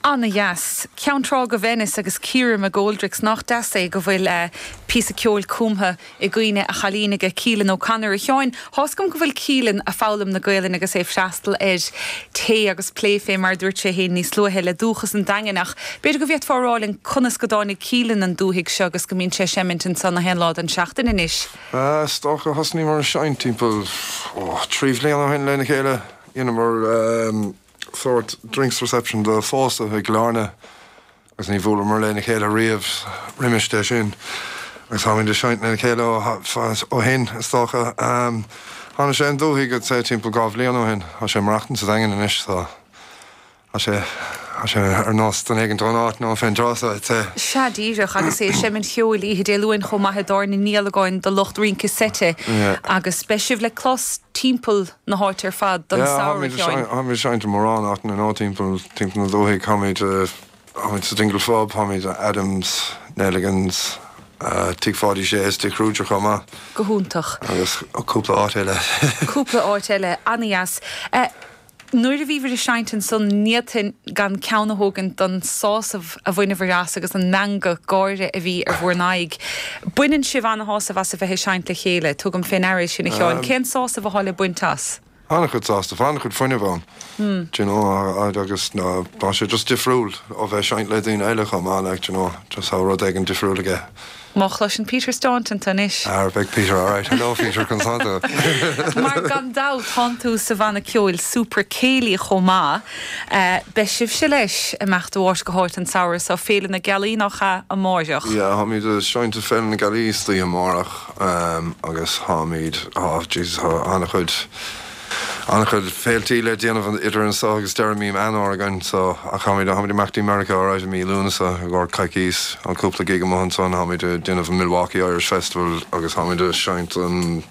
Ana dheas. Ceann Trá go Venice agus Ciara McGoldricks nach deas é go bhfuil eh píosa ceoil cumtha i gcuimhne a chailín aige Keelin O'Connor. A Sheáin, thá's agam go bhfuil Keelin a' foghlaim na Gaolainne agus é a' freastal ar Tae agus Plé fé mar a dúirt sé fhéin níos luaithe le Dúchas an Daingin ach b'fhéidir go bhféadfá a rá linn conas go dtáinig Keelin an dúthaigh seo agus go mbíonn sé a' seimint anso na haon lá den seachtain anois? Is dócha thosnaíomar a seinnt timpeall, ó, trí bhliana ó shin lena chéile. Dheineamar sórt drinks reception do phósadh i gCill Airne agus ní bhuaileamar lena chéile riamh roimis de sin agus táimid ag seinnt lena chéile ó shin, is dócha. Tháinig sé an dúthaigh, I'd say, timpeall dhá bhliain ó shin. Tá sé ag maireachtaint sa Daingean anois. Tá sé, tá sé ar nós duine éigint ón áit now fén dtráth so. Sea, díreach, agus é ag seinm an cheoil oíche Dé Luain chomh maith i dtábhairne Niallagáin do lucht rince seite agus beidh sibh le clos timpeall na háite ar fad don samhradh, a Sheáin. Sea, táimid ag seinnt i mórán áiteanna now timpeall, timpeall na dúthaí. Táimid, táimid sa Dingle Phub, táimid i Adam's, Neligans, Tigh Pháidí Sé is Tigh Khruger chomh maith. Go hiontach. Agus cúpla áit eile. Cúpla áit eile, ana-dheas. Nuair a bhíobhair ag seinnt ansan n'fhéadfainn gan ceann a thógaint don sásamh a bhaineabhair as agus an meangadh gáire a bhí ar bhur n-aghaidh. Baineann sibh ana-shásamh as a bheith ag seinnt le chéile, tugaim fé ndeara é sin a Sheáin. Cén sásamh athá le baint as? Tá ana-chuid sásaimh, ana-chuid fuinnimh ann d'you know agus tá sé just difriúil ó bheith ag seinnt le daoine eile chomh maith like d'you know just tá rud éigin difriúil aige. Má chloiseann Peter Staunton tú anois. Á beidh Peter alright. Hello Peter, can sort of. Mar gan dabht, tánn tú sa bhanna ceoil Super Céilí chomh maith. Beidh sibhse, leis, ag imeacht ó aird go haird an samhradh so, Féile na Gealaí, nach ea, amáireach? Yeah, táimid ag seinnt ag Féile na Gealaí istoíche amáireach agus táimid, oh Jesus, tá an-chuid, An-chuid féiltí le déanamh idir anso agus deireadh Meán Fhómhair againn so ach táimid, táimid ag imeacht dtí Meiriceá ar aghaidh i mí Lúnasa i gcomhair coicís, tá cúpla gig amuigh ansan, táimid a' déanamh an Milwaukee Irish Festival agus táimid a' seinnt an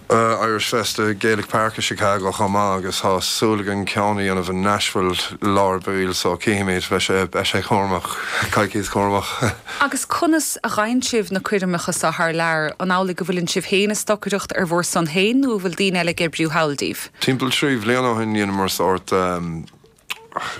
eh Irish Fest i Gaelic Park i Chicago chomh maith agus tá súil againn ceann a dhéanamh in Nashville i lár baill so cífimid, beidh sé, beidh sé cúramach, coicís cúramach. Agus conas a fhaigheann sibh na coirmeacha so thar lear? An amhlaidh go bhfuileann sibh féin ag stocaireacht ar bhur son féin nó an bhfuil daoine eile ag oibriú thall daoibh? Timpeall trí bhliain ó shin dheineamar sórt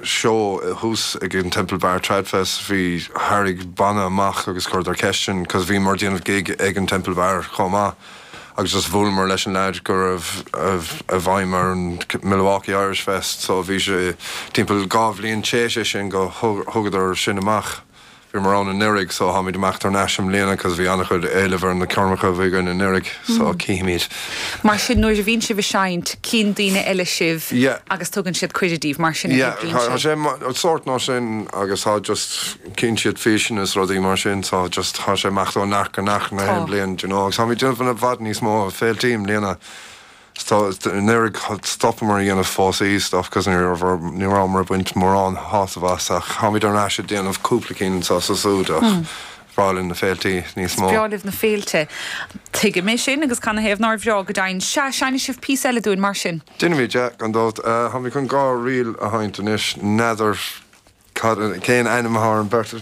seó thuas ag an Temple Bar Trad Fest. Bhí, tharraing banna amach agus chuireadar ceist orainn cos bhíomar ag déanamh gig ag an Temple Bar chomh maith agus just bhuaileamar leis an leaid go raibh i bhfeidhm ar an Milwaukee Irish Fest so bhí sé timpeall dhá bhliain théis é sin go thugadar sinn amach. Bhíomar ann anuiridh so táimid ag imeacht thar n-ais i mbliana 'cause bhí an-chuid éilimh ar na coirmeacha a bhí againn anuiridh so cífimid. Mar sin nuair a bhíonn sibh ag seinnt cíonn daoine eile sibh Yeah. agus tugann siad cuireadh daoibh, mar sin a Yeah oibríonn tá sé? sé mar sórt mar sin agus tá just cíonn siad físeanna is rudaí mar sin so just tá sé ag imeacht ó neart go neart nach Tá. aon bhliain d'you know agus táimid ag déanamh i bhfad níos mó féiltí i mbliana. Stop, nuair a stopamar a dhéanamh póstaí, stop cos ní raibh orm, ní rabhamar ag baint mórán shásamh as ach táimid ar ais ag déanamh cúpla cinn anseo 's ansúd ach is breá linn na féiltí níos Is mó. breá libh na féilte. Tuigim é sin agus canathaobh nár bhreá, go deimhin. Sea, seinnfidh sibh píosa eile dúinn mar sin. Déanfaimid é, gan dabht. Táimid chun dhá ríl a sheinnt anois, n'fheadar cad, cén ainm atá ar an beirt ríl.